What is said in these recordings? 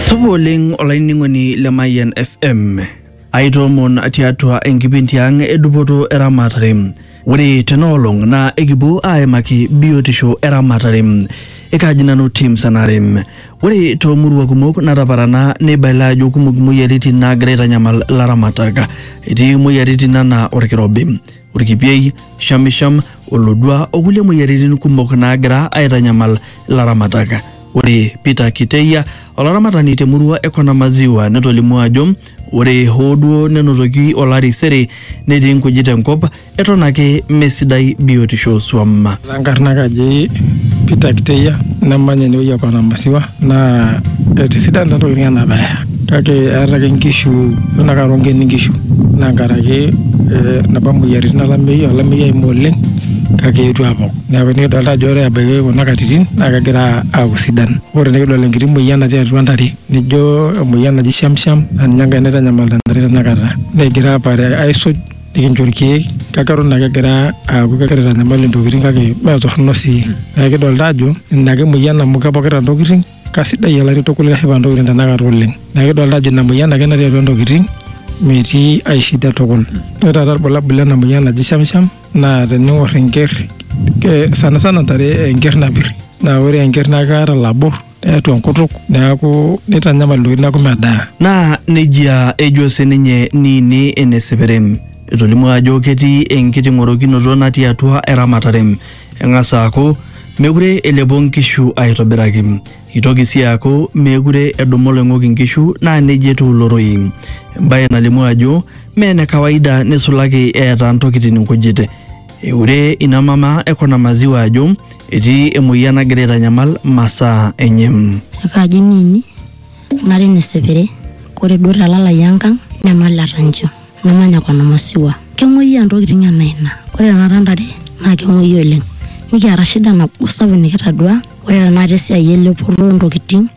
Supa oleng olainining'oni le Mayian FM. Aitoomon tiatua enkipindi ang edupoto eramatare. Ore tenaolong naa ekipuo aimaki biotisho eramatare. Ekaji nanu Tim Sanare. Ore toomurua kumok nataparana neibaila ajo kumok imoyiaritin naagira aitanyamal ilaramatak. Etii imoyiaritin anaa olkirobi. orkipiei, shamisham, olodua o kulie moyiaritin kumok naagira aitanyamal ilaramatak. Ore Peter Kiteia, olaramatani te murua e Kona Maziwa netolimuo ajo ore hoo duo nenotoki olari sere netii nkujit enkop eton ake mesidai biotisho oo swam. Enkarna kaji Peter Kiteia namanya enewueji e Kona Maziwa. naa etisidana ntokitin ena bae kake eeta ake nkishu tenakata rongeni nkishu naa nkaraki napa moyiaritin olameyu olameyu oimu oleng kake eetuo aapok neeku nikidolita ajo ore ebaiki kuna katitin naa kegira aaku sidan ore nikidol enkiti moyian natii atua ntare nijo emoyian naji shamsham naa ninye enkae naitanyamalita ntare tenakata negira aapare aisuj nikincho irkeek kake eton ake egira aaku kegira aitanyamal intokitin kake mee torrono sii neeku kidolta ajo ina ake emoyian amu kepokita intokitin kasidai olari tukul keshipa intokitin tenakata oleng neeku kidolta ajo ina moyian ake natii atua intokitin metii ae shida tukul ore taata irbulabul lena moyian naji shamsham naa tening'orr enkerr eh, sanasana intare enkerr napirr naa ore enkerr naa keeta ilabor. neatu enkutuk neaku neitanyamal ntokitin neaku medaa. Naa nejia ejo sininye Niini ene Seperem. Etolimuo ajo ketii enkiting'orokinoto natii atua eramatare. Eng'as aaku meekure elepo nkishu aitobiraki. Eitoki sii aaku meekure edumu oloing'ok inkishu naa nejia etiu ilo rorei. Embae nalimu ajo mee ene kawaida neisulaki eeta ntokitin nkujit. Eure ina mama e Kona Maziwa ajo etii emoyian nagira aitanyamal masaa enye. Akaji nini nari nesepere kore duo telalai enkang nemaleta ncho namanya Kona Maziwa. Kemoyiaa ntokitin enaa ina kore tenakata ntare naa kemoyia oleng nikiata shida nabo sapuk nikitadua ore tenakata esiai elepoto ontokitin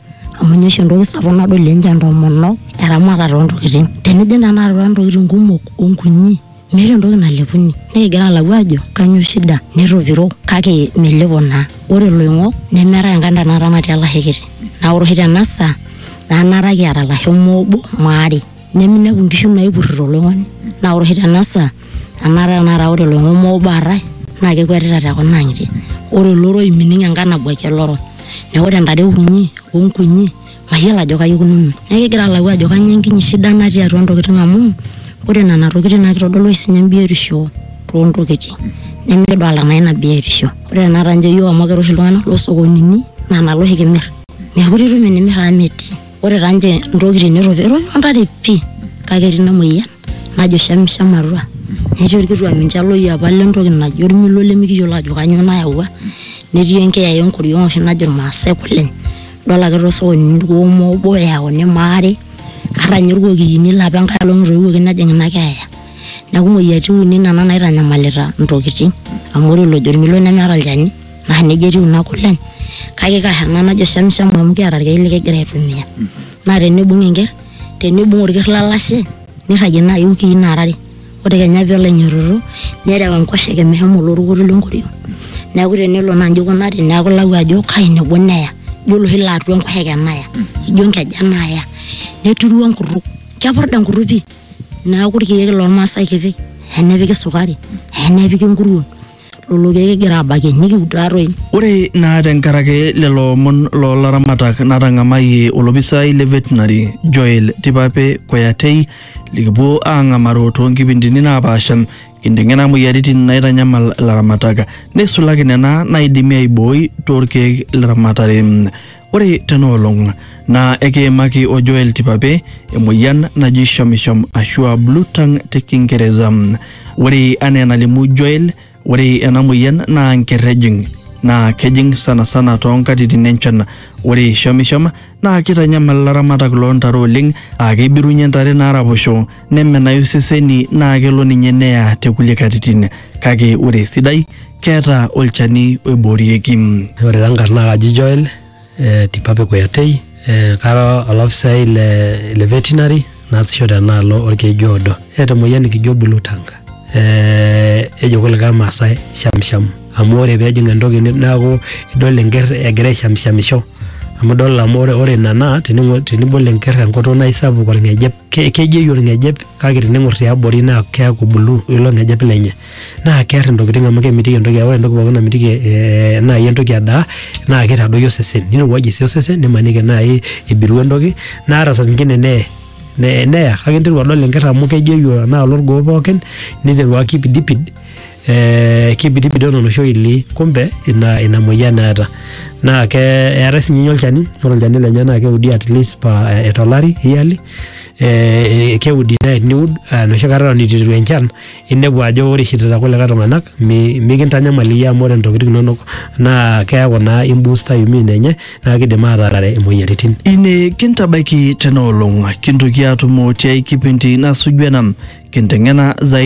amu ninye oshi entoki sapuk nadol ninche ntomonok eramatare ontokitin tenijing tenakata atua ntokitin kumok onkunyi. Meeta entoki nalepuni. Nikigira alau ajo kanyoo shida netopiro kake melepo naa. Ore iloing'ok nemeetae enkae ntae naata natii olashe kiti. Naa ore oshi tena saa naa enaata kiata ilasho mme obo mme aare. Neminepu inkishu naipurrito oloing'oni. Naa ore oshi tena saa enaata tenakata ore iloing'ok mme obo aare naa kekuetita te kuna ang'itie. Ore olorou mining enkae nabwaiki olorou. Neeku ore intare kunyi o nkunyi mayiolo ajo kaji ikununo. Neeku kigira alau ajo kainyioo enkinyi shida natii atua ntokitin amu ore nena tokitin naa kitodolu oshi sininye biotisho too ntokitin nemikidolita naa ina biotisho. Ore tenakata ninche iyiook amu kira oshi iltung'anak loo sokonini naa nalo oshi kimir. Meekure itum enimir amu metii. Ore taa ninche ntokitin neropil, eropilo ntare pii kake etii ina muoyian. najo shamsham atua netii orkituak ninche loyiapa lentoki naji ormilo lemikiyiolo ajo kanyoo nayawua netii enkiyaya enkoriong oshi najo irmaasae kule idol ake tosokonini irkuoma obo eyauni maare ata ninye irkokiyini lapa enkae olong etoiwuoki nejing ina keeya neku imoyiaritin uni nena naitanyamalita intokiting amu ore olojo ormilo nemeeta olchani naa nejia etiu ina kule kake kaa ena najo shamsham amu kiata irkeek likigira aitumia naa tenibung enkerr tenibung orker lalashe nirragie naaji iwikii naara are ore kenya peelo ainyototo nerew enkoshoke meshomo olorukuto lenkoriong neeku tenelo naa inji ikunari neeku ilau ajo kai nebo neya ijo oloshi laa atua enkoshoke naya ijo inkeja naya neturu enkurruk kepurda enkurruk pii neeku irkeek lormasae kipik hee nepiki sukari hee nepiki inkuruon. lolo keek kigira aabakie nikiud taatoi. Ore naa tenkaraki lelo omon loo laramatak natang'amayie olopisai le Veterinary Joel Tipape Koyatei likipuo aang'amaru too nkipindini naapaasha kinteng'ena moyiaritin naitanyamal ilaramatak neisulaki nena naaidimi aibooi too lkeek le ramatare. Ore tena olong naa ekiimaki o Joel Tipape emoyian naji shamisham ashu a blue tongue te Kingereza. Ore anaa enalimu Joel, ore ena moyian naa nker ejing naa kejing sanasana too nkatitin enchan. Ore shamisham naa keitanyamal ilaramatak loo ntare oleng aa keibirunye ntare naaraposho nemenayu seseni naa kelo ninye neya te kulie katitin kake ore esidai keeta olchani oiboorieki. Ore taa nkarn naa kaji Joel eh, Tipape Kuyatei eh, kara olafisai le, le veterinary naasisho tenaalo olkeju oodo. Eeta emoyian nikijo blue tongue eh, ejo kulikae Maasai shamsham amu ore peejing entoki ni- neaku idol enker egira aishamshamisho amu idol amu ore, ore ina naa tening'o- tenibol enker enkutuk naa isapuk olng'ejep ke- kejeyu orng'ejep kake tening'or tiabori naa keaku bulu ilo ng'ejep lenye naa kear intokitin amu kemitiki entoki ore entoki pookin namitiki eh, naaji entoki edaa naa kitadoyio osesen nirowuajie sii osesen nimaniki naaji ibiru entoki naa ata saa zingine neye ne- neya kake interu adol enkerr amu kejeyu enaalo orgoo pookin niteru akipidipid eh, kibidibidon oloshi oili kumbe ina, ina moyian eeta naa ke eetae sinye ninye olchani ore olchani lenye naa keudi at least pa eh, tolari yearly eh, keudi naa teniud eh, enoshi kata eton itu eiteru enchan inepu ajo ore ishirita kulikae tung'anak mi- mikintanyamal iyie amu ore intokiting inonok naa keeku naa imbusta immune enye naa kidim ataarare imoyiaritin ine kintabaiki tena olong kintoki atumo tiai kipindi nasuju ena kinteng'ena zaidi